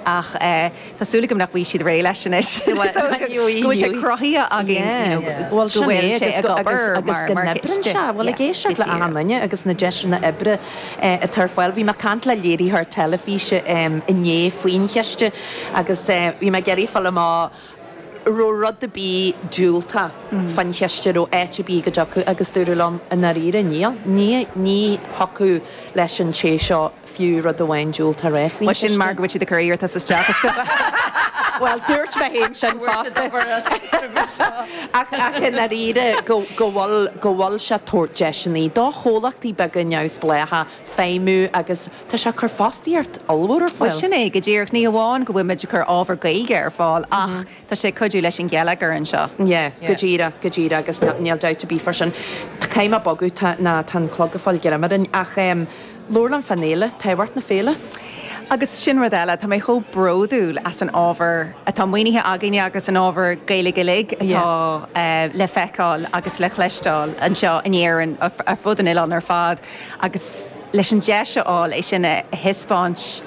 ach tá súil agam nach bhfaighidh siad réidh leis anois go bhfuil sé cruthaithe againn go bhfuil sé ag obair agus go n-oibríonn sé. Bhuel, ag éisteacht le achan duine agus na deiseanna oibre atá ar fáil. Bhí mé ag caint le léiritheoir teilifíse inné faoin chiste agus bhí mé ag iarraidh a fháil amach an raibh rud ar bith diúltach faoin chiste, an raibh áit ar bith go dtiocfadh agus dúradh liom i ndáiríre níl. Ní thiocfadh leis an té seo. fiú rud amháin diúltach a rá faoin chiste. B'shin mar go bhfuil siad ag cur iarratas isteach i scuba. Bhuel, dúirt mé féin sin fosta. Ach i ndáiríre, go bhfuil, go bhfuil sé ag tabhairt deiseanna do chomhlachtaí beaga neamhspléacha feidhmiú agus tá sé ag cur fostaíocht ollmhór ar fáil. Bhuel, sin é, go díreach. Ní hamháin go bhfuilimid ag cur ábhar Gaeilge ar fáil ach Tá sé ag cuidiú leis an gheilleagar anseo. Yeah, go díreach, go díreach agus níl dabht ar bith fá sin. Tá, caithfidh mé bogadh, nó tá an clog ag fáil greim orainn ach em, labhair liom fán fhéile, tábhacht na Féile. Agus sin rud eile, tá mé chomh bródúil as an ábhar atá maoinithe againne agus an ábhar Gaeilge uilig atá eh le feiceáil agus le cloisteáil anseo in Éirinn, ar fud an oileáin ar fad agus leis an deis a fháil é sin a thaispeáint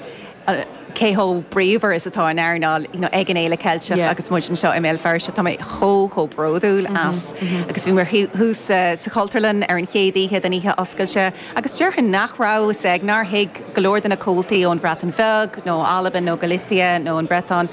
cé chomh bríomhar is atá an earnáil ag an Fhéile Cheilteach agus muid anseo i mBéal Feirste. Tá mé chomh, chomh bródúil as. Agus bhí mé thuas sa Chultúrlann ar an chéad oíche don oíche oscailte agus déarfainn nach raibh, is ea, nár thuig go leor de na comhaltaí ón Bhreatain Bheag nó Albain nó Galicia nó an Bhriotáin,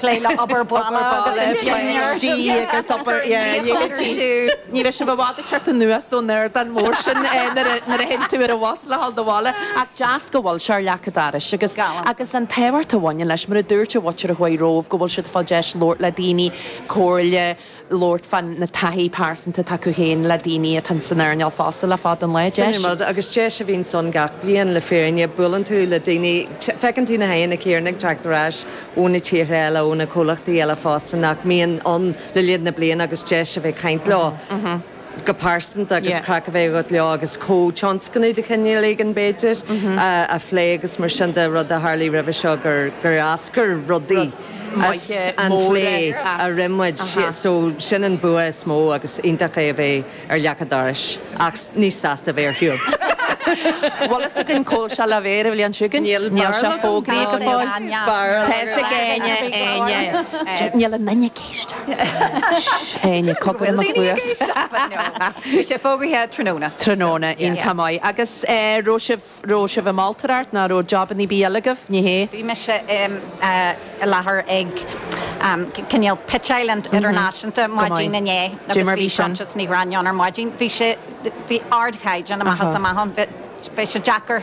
Plé le obair bhaile agus dinnéar. agus obair dhiaidh siúd. Ní bheidh sibh i bhfad ag teacht anuas ón ardán mór sin nuair a théann tú ar an bhus le dhul abhaile. Ach deas go bhfuil sé ar leac an dorais agus agus an tábhacht a bhaineann leis. Mar a dúirt an mhuintir a chuaigh romhaibh go bhfuil siad ag fáil deis labhairt le daoine, comhairle, labhairt fá na taithí pearsanta atá acu féin le daoine atá san earnáil fosta le fada an lá. Sin é an rud, agus deis a bhíonns ann gach bliain le fírinne. Buaileann tú le daoine, feiceann tú na haghaidheanna céarna ag teacht ar ais ó na tíortha eile, ó na comhlachtaí eile fosta nach mbíonn ann le linn na bliana agus deis a bheith ag caint leo. go pearsanta agus craic a bheith agat leo agus comhthionscnamh de chinéal éigin b'fhéidir a phlé agus mar sin de, rud a tharlaigh roimhe seo gur eascair rudaí as an phlé a rinn muid so sin an bua is mó agus iontach é a bheith ar leac an dorais ach níos sásta a bheith ar shiúl. Bhfuil fhios againn cá'l sé le bheith ar an bhliain seo chugainn? Níl, níl sé fógraithe go fóill. Níl, níl, níl. Tá fhios ag éinne, éinne. Níl an minic. Éinne cogar i mo chluas. Beidh sé fógraithe tráthnóna. Tráthnóna, iontach maith. Agus raibh sibh, raibh sibh ag moltóireacht nó raibh job ar bith eile agaibh, ní hea? Bhí mise i láthair ag cinéal pitcheáil idirnáisiúnta maidin inné agus bhí Proinsias Ní Ghráinne ann ar maidin. Bhí sé, bhí ardchaighdeán amach is amach ann. Beidh sé deacair.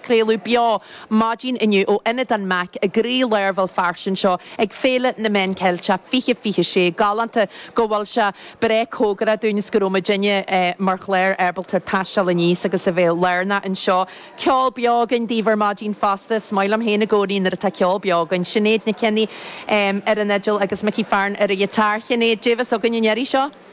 Craoladh beo maidin inniu ó Ionad an Mac i gcroílár Bhéal Feirste anseo ag Féile na Meán Ceilteach 2026 galánta go bhfuil sé breá cóngarach dúinn is go raibh muidinne mar chlár ábalta taisteal aníos agus a bheith lárnach anseo. Ceol beo againn daoibh ar maidin fosta. Is maith liom féin i gcónaí nuair atá ceol beo againn. Sinéad Nic Cionnaith ar an fhidil agus Mickey Fearon ar an ghiotár. Shinéad, cad é a bheas againn an iarraidh seo?